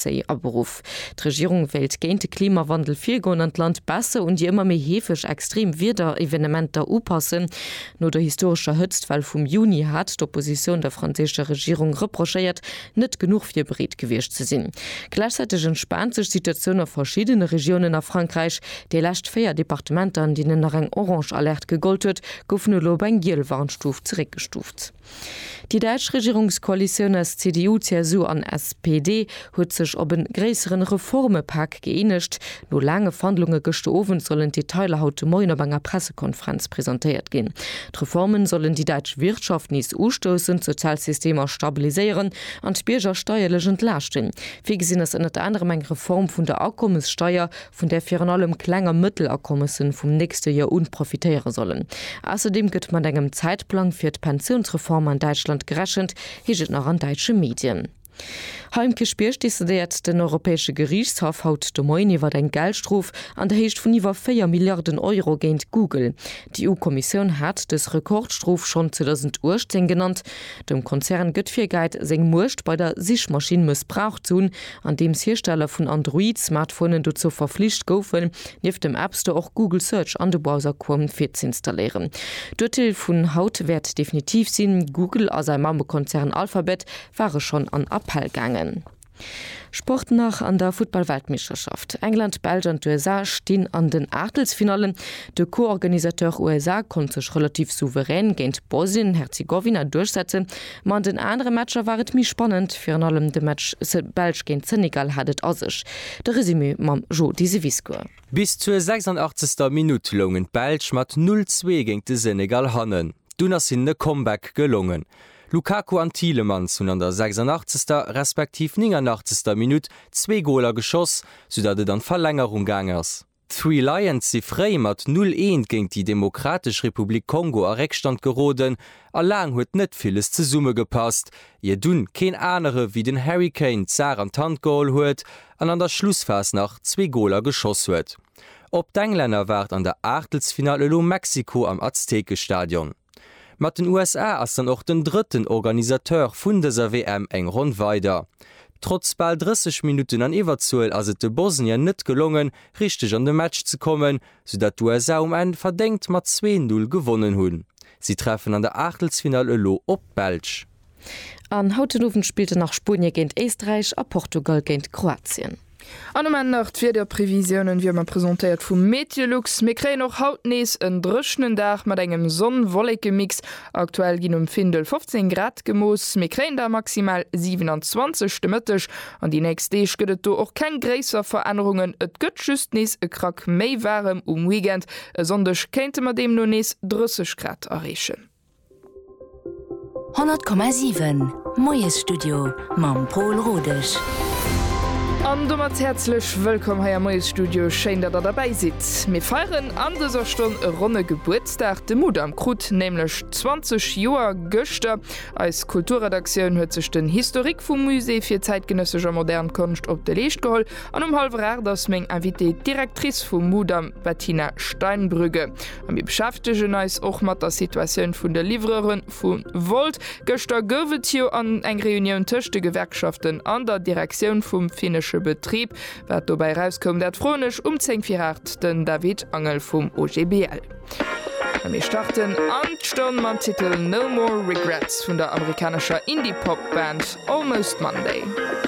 Zéi a Beruff. D'Regierung wéilt géint de Klimawandel virgoen an d'Land besser un déi ëmmer méi heefeg extreem Wiederevenementer upassen. No der historescher Hëtztwell vum Juni hat d'Oppositioun der franséischer Regierung reprochéiert, net genuch virbereet gewiescht ze sinn. Gläichzäiteg entspaant sech d'Situatioun a verschiddene Regiounen a Frankräich. Déi lescht véier Departementer, an deenen nach eng orange Alerte gegollt huet, goufen elo op eng giel Warnstuf zeréckgestuft. Déi däitsch Regierungskoalitioun aus CDU, CSU an SPD huet sech op e gréisseren Reformepak gëeenegt. No laange Verhandlunge gëschter Owend sollen d'Detailer haut de Moien op enger Pressekonferenz presentéiert ginn. D'Reforme sollen déi däitsch Wirtschaft nees ustoussen, d'Sozialsystemer stabiliséieren an d'Bierger steierlech entlaaschten. Virgesinn ass ënnert anerem eng Reform vun der Akommessteier, vun där virun allem Kleng a Mëttelakommessen vum nächste Joer un profitéiere sollen. Ausserdeem gëtt mat engem Zäitplang fir d'Pensiounsreform an Däitschland gerechent, heescht et nach an däitsche Medien. Hei um Kierchbierg decidéiert den Europäesche Geriichtshaff haut de Moien iwwer eng Geldstrof an der Héicht vun iwwer 4 Milliarden Euro géint Google. D'EU-Kommissioun hat dës Rekordstrof schonn 2018 genannt. Dem Konzern gëtt virgehäit, seng Muecht bei der Sichmaschinn mëssbraucht ze hunn, andeems Hiersteller vun Android-Smartphonen dozou verflicht goufen, nieft dem App Store och Google Search an de Browser Chrome virzeinstalléieren. D'Urteel vun haut wäert definitiv sinn, Google a säi Mammekonzern Alphabet ware schonn an Appell gaangen. Sport nach, An der Futtball-Weltmeeschterschaft, England, Belsch an d'USA stinn an den Aachtelsfinallen. De Co-Organisateur USA konnt sech relativ souverän géint Bosnien-Herzegowina duerchsetzen. Ma an den anere Matcher war et méi spannend, virun allem de Match Belsch géint Senegal hat et a sech. De Resumé mam Jo Diseviscourt. Bis zur 86. Minutt loungen d'Belsch mat 0, 2 géint de Senegal hannen. Dunn ass hinnen e Comeback gelongen. Lukaku an Thielemans hunn an der 86. respektiv 89. Minutt zwee Goler geschoss, soudatt et an d'Verlängerung gaang ass. D'Three Lions si fréi mat 0, 1 géint déi Demokratesch Republik Kongo a Réckstand geroden a laang huet net villes zesummegepasst, ier dunn keen anere wéi den Harry Kane d'Saach an d'Hand geholl huet an an der Schlussphas nach zwee Goler geschoss huet. Op d'Englänner waart an der Aachtelsfinall elo Mexiko am Aztekestadion. Mat den USA ass dann och den drëtten Organisateur vun dëser WM eng Ronn weider. Trotz bal 30 Minutten an Iwwerzuel ass et de Bosnier net gelongen, richteg an de Match ze kommen, soudatt d'USA um Enn verdéngt mat 2, 0 gewonnen hunn. Si treffen an der Aachtelsfinall elo op d'Belsch. An haut den Owend spillte nach Spuenie géint Éisträich a Portugal géint Kroatien. An um Enn nach d'Wiederprevisiounen, wéi ëmmer presentéiert vu Meteolux. Mir kréien och haut nees en dréchnen Dag mat engem Sonn-Wollekemix. Aktuell ginn um Findel 15 Grad gemooss, mir kréien der maximal 27 de Mëtteg. An déi nächst Deeg gëtt et do och keng gréisser Verännerungen, et gëtt just nees e Krack méi waarem um Weekend. E Sonndeg kéinte mer deemno nees 30 Grad erreechen. 100,7 Moiesstudio mam Pol Rodesch. An domat häerzlech wëllkomm hei am Moiesstudio. Schéin datt der derbäi sidd. Mir feieren an dëser Stonn e ronne Gebuertsdag. De Mudam krut nämlech 20 Joer gëschter. Eis Kulturredaktioun huet sech den Historique vum Musée fir zäitgenëssesch a modern Konscht op de Leescht geholl. An um hallwer 8 ass meng Invitée d'Directrice vum Mudam, d'Bettina Steinbrügge. A mir beschäftegen eis och mat der Situatioun vun de Livreuren vu Wolt. Gëschter gouf et jo an eng Reunioun tëscht de Gewerkschaften an der Direktioun vum finnesche Betrib. Wat dobäi erauskoum, dat froen ech um 10 vir 8 den David Angel vum OGBL. A mir starten an d'Stonn mam Titel No More Regrets vun der amerikanescher Indie-Pop-Band Almost Monday.